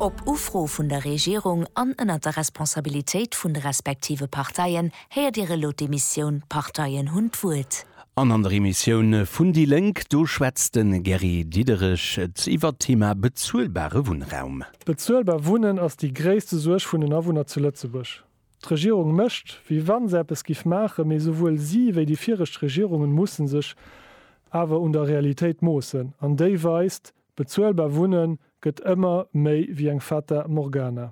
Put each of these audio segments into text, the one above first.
Op Ufro vun der Regierung an ënnert der Responsabilitéit vun de respektive Parteien héiert Dir elo d'Emissioun D'Parteien hunn d'Wuert. An an der Emissioun vun déi Lénk, do schwätzt de Gary Diderich iwwert d'Thema bezuelbare Wunnraum. D'bezuelbar Wunnen ass déi gréisste Suerg vun den Awunner zu Lëtzebuerg. D'Regierung mécht, wéi wann se eppes giff maachen, mee souwuel si wéi déi viregt Regierungen mussen sech awer un der Realitéit moossen an déi weist, Bezuelbar Wunne gëtt ëmmer méi wéi eng Fata Morgana.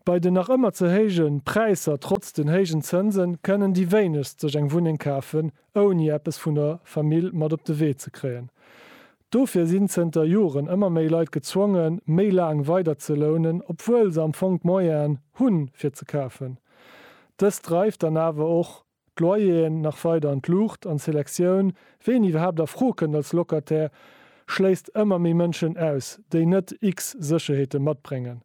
Bei den nach ëmmer ze héije Präisser trotz den héijen Zënsen kënnen déi wéinegst sech eng Wunneng kafen, ouni eppes vun der Famill mat op de Wee ze kréien. Dofir sinn zënter Joren ëmmer méi Leit gezwonge méi laang weider ze lounen, obwuel se am Fong d'Moyenen hunn fir ze kafen. Dëst dreift dann awer och d'Loyeren nach weider an d'Luucht an d'Selektioun, wien iwwerhaapt a Fro kënnt als Locataire, schléisst ëmmer méi Mënschen aus, déi net x Sécherheete matbréngen,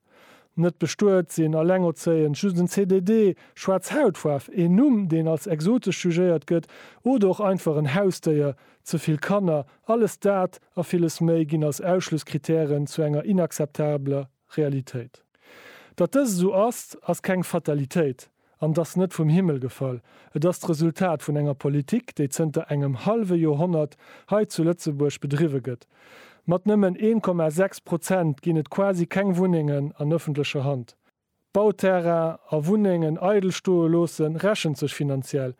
net bestuet sinn, elengerzéiend, just en CDD, schwaarz Hautfaarf, een Numm, deen als exotesch jugéiert gëtt, oder och einfach en Hausdéier, ze vill Kanner, alles dat a villes méi ginn als Ausschlusskrittären zu enger inakzeptabeler Realitéit. Datt dëst esou ass, ass keng Fatalitéit, An et ass net vum Himmel gefall, et ass d'Resultat vun enger Politik, déi zënter engem hallwe Joerhonnert hei zu Lëtzebuerg bedriwwe gëtt. Mat nëmmen 1,6 Prozent ginn et quasi keng Wunnengen an ëffentlecher Hand. Bauterrain a Wunnengen eidel stoe loossen, rechent sech finanziell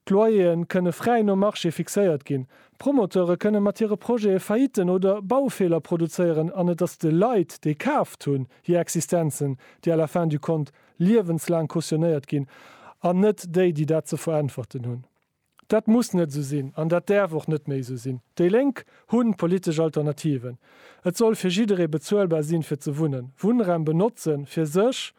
D'Loyere kënne fräi nom Marché fixéiert ginn. Promoteure kënne mat hire Projete Faillitten oder Baufeeler produzéieren an et ass de Leit, déi kaaft hunn, hir Existenzen, déi à la fin du compte liewenslaang cautionnéiert ginn an net déi, déi dat ze veräntwerten hunn. Dat muss net esou sinn an dat däerf och net méi esou sinn. Déi Lénk hunn politesch Alternativen. Et soll fir jidderee bezuelbar sinn, fir ze wunnen, Wunnraum benotzen, fir sech,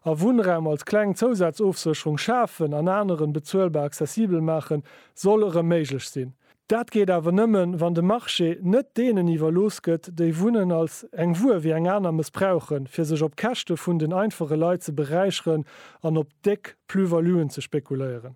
a Wunnraum als kleng Zousazofsécherung schafen an aneren bezuelbar accessibel maachen, soll erëm méiglech sinn. Dat geet awer nëmmen, wann de Marché net deenen iwwerlooss gëtt, déi Wunnen als eng Wuer wéi eng aner mëssbrauchen, fir sech op Käschte vun den einfache Leit ze beräicheren an op déck Plus-valuen ze spekuléieren.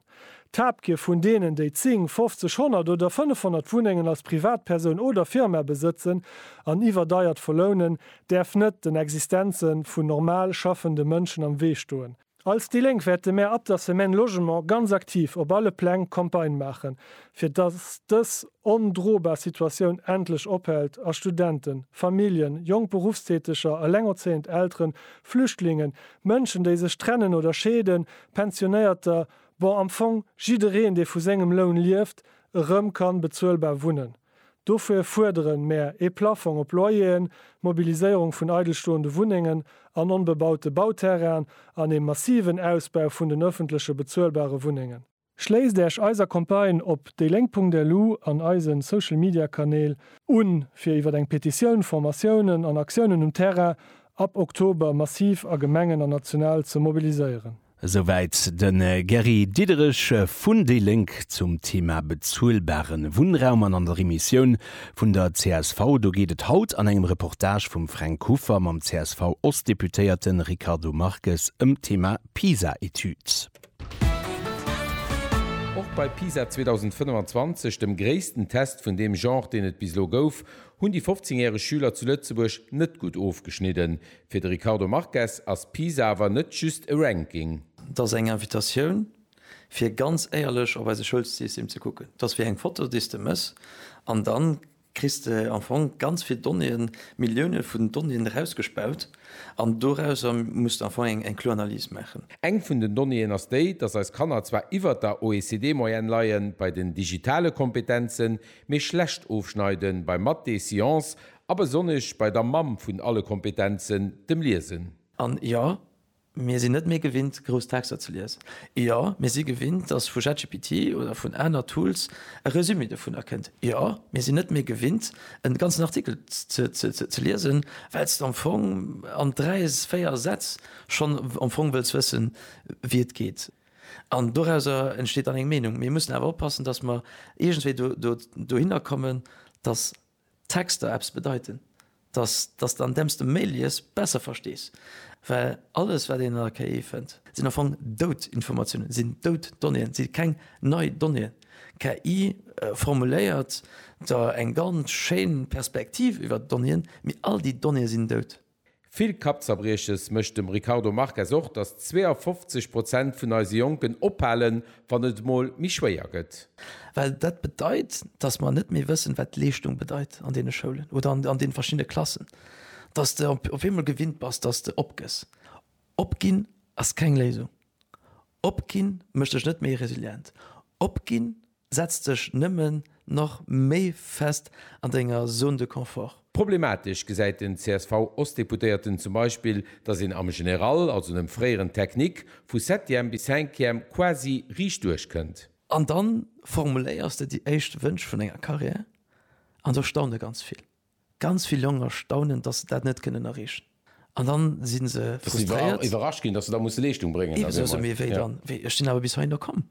D'Haaptgier vun deenen, déi 10, 50, 100 oder 500 Wunnengen als Privatpersoun oder Firma besëtzen an iwwerdeiert verlounen, däerf net den Existenze vun normal schaffende Mënschen am Wee stoen. Als déi Lénk wäerte mär ab der Semaine Logement ganz aktiv op alle Pläng Campagne maachen, fir dass dës ondrobar Situatioun endlech ophält a Studenten, Familljen, jonk Beruffstäteger, allengerzéiend Elteren, Flüchtlingen, Mënschen, déi sech trennen oder scheeden, Pensionéierter, bon am Fong jiddereen dee vu sengem Loun lieft, erëm kann bezuelbar wunnen. Dofir fuerderen mär ee Plaffong op Loyeren, Mobiliséierung vun eidelstoende Wunnengen an onbebaute Bauterrainen an ee massiven Ausbau vun den öffentleche bezuelbare Wunnengen. Schléisst Äech eiser Campagne op déilénk.lu an eisen Social Media Kanäl un fir iwwer eng Petitioun, Formatiounen an Aktiounen um Terrain ab Oktober massiv a Gemengen an national ze mobiliséieren. Esouwäit de Gary Diderich vun déi Lénk zum Thema bezuelbare Wunnraum. An an der Emissioun vun der csv, do geet et haut an engem Reportage vum Fränk Kuffer mam CSV-Ost-Deputéierte Ricardo Marques ëm d'Thema PISA-Etüd. Och bei PISA 2025, dem gréissten Test vun deem Genre, deen et bis elo gouf, Hunn déi 15 järeg Schüler zu Lëtzebuerg net gutt ofgeschnidden. Fir de Ricardo Marques ass PISA awer net just e Ranking. Et ass eng Invitatioun, fir ganz éierlech op eise Schoulsystem ze kucken. Et ass wéi eng Foto, déi s de méchs, an da kriss de am Fong ganz vill Donnéeën, Millioune vun Donnéeën erausgespaut, an dorauser muss de am Fong eng kloer Analys maachen. Eng vun den Donnéeën ass déi, dass eis Kanner zwar iwwert der OECD-Moyenne leien bei den digitale Kompetenzen, Mee schlecht ofschneiden bei mat des Science a besonnesch bei der Mamm vun alle Kompetenzen, dem Liesen. An jo, mir sinn net méi gewinnt grouss Texter ze liesen. Jo, mir si gewinnt, dass vu ChatGPT oder vun aner Tools e Resumé dovunner kënnt. Jo, mir sinn net méi gewinnt en ganzen Artikel ze liesen, well s de am Fong an dräi, véier Sätz schonn am Fong wëlls wëssen, wéi et geet. An dorauser entsteet dann eng Meenung. Mir mussen awer oppassen, datt mer iergendwéi do, dohinner kommen, datt d'Texter eppes bedeiten, datt, datt de andeems de méi lies, besser verstees. Well alles, wat een an der KI fënnt, sinn am Fong dout Informatiounen, sinn dout Donnéeën, si keng nei Donnéeën. D'KI formuléiert der eng ganz schéin Perspektiv iwwert d'Donnéeën, mee all déi Donnéeë sinn dout. Vill Kappzerbrieches mécht dem Ricardo Marques och, datt 52 Prozent vun eise Jonken ophalen, wann et emol méi schwéier gëtt. Well dat bedeit, datt mer net méi wëssen, wat Leeschtung bedeit an deene Schoulen oder an deene verschiddene Klassen. Datt de op eemol gewinnt bass, datt de opgëss. Opginn ass keng Léisung. Opginn mécht dech net méi resilient. Opginn Setzt sech nëmmen nach méi fest an denger Zone de confort. Problematesch gesäit den CSV-Ost-Deputéierten zum Beispill, datt een am General, also dem fréieren Technique, vu Septième bis Cinquième quasi riicht duerch kënnt. An dann formuléiers de déi éischt Wënsch vun enger Carrière an do staune ganz vill. Ganz vill Jongen erstaunen, dass se dat net kënnen erreechen. An dann si se frustréiert. Iwwerrascht ginn, dass se da musse Leeschtung bréngen. Eben esou, esou, mee wéi dann? Wéi, ech sinn awer bis heihinner komm.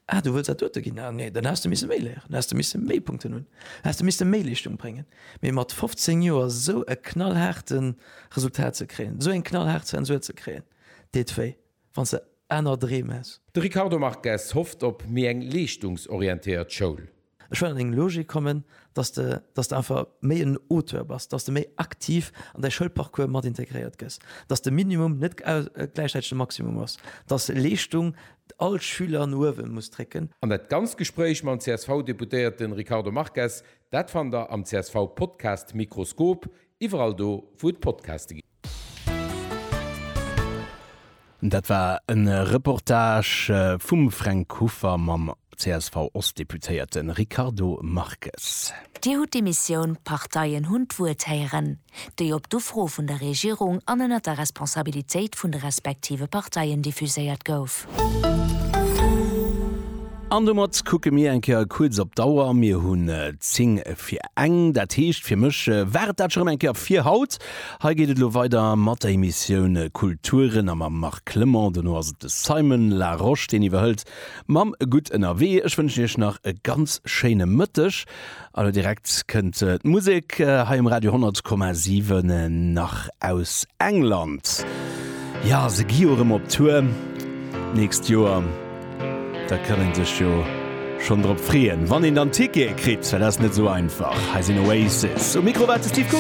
Ah, du wëlls dat dote ginn? Ah nee, dann häss de misse méi léieren, da häss de misse méi Punkten hunn, da häss de misse méi Leeschtung bréngen. Mee mat 15 Joer esou e knallhaarte Resultat ze kréien, esou eng knallhaart Zensur ze kréien, deet wéi. wann se aner Dreem häss. De Ricardo Marques hofft op méi eng leeschtungsorientéiert Schoul. Ech wëll an eng Logik kommen, dass de dass de einfach méi en Auteur bass, dass de méi aktiv an däi Schoulparcours mat integréiert gëss, dass de Minimum net gläichzäiteg de Maximum ass, dass Leeschtung all Schüler no uewe muss drécken. An dat ganzt Gespréich mam CSV-Deputéierte Ricardo Marques, dat fannt der am CSV-Podcast Mikroskop, iwwerall do, wou et Podcaste ginn. Dat war e Reportage vum Fränk Kuffer mam CSV-Ost-Deputéierte Ricardo Marques. Dir hutt d'Emissioun Parteien hunn d'Wuert héieren, déi op d'Ufro vun der Regierung an ënner der Responsabilitéit vun de respektive Parteien diffuséiert gouf. An domat kucke mir eng Kéier kuerz op d'Auer. Mir hunn 10 vir eng. Dat heescht fir mech war et dat scho rëm eng Kéier fir haut. Hei geet et elo weider mat der Emissioun Kulturen a mam Marc Clement. Dono ass et de Simon Larosche deen iwwerhëlt mam Gutt ënnerwee. Ech wënschen iech nach e ganz schéine Mëtteg a lo direkt kënnt d'Musek hei um Radio 10,7 nach aus England. Jo se gi jo erëm op Tour d'nächst Joer, da kann een sech jo schonn drop freeën wann een dann Tickete kritt, well dat ass net esou einfach. Hei sinn Oasis, um Mikro war de Steve Coogan.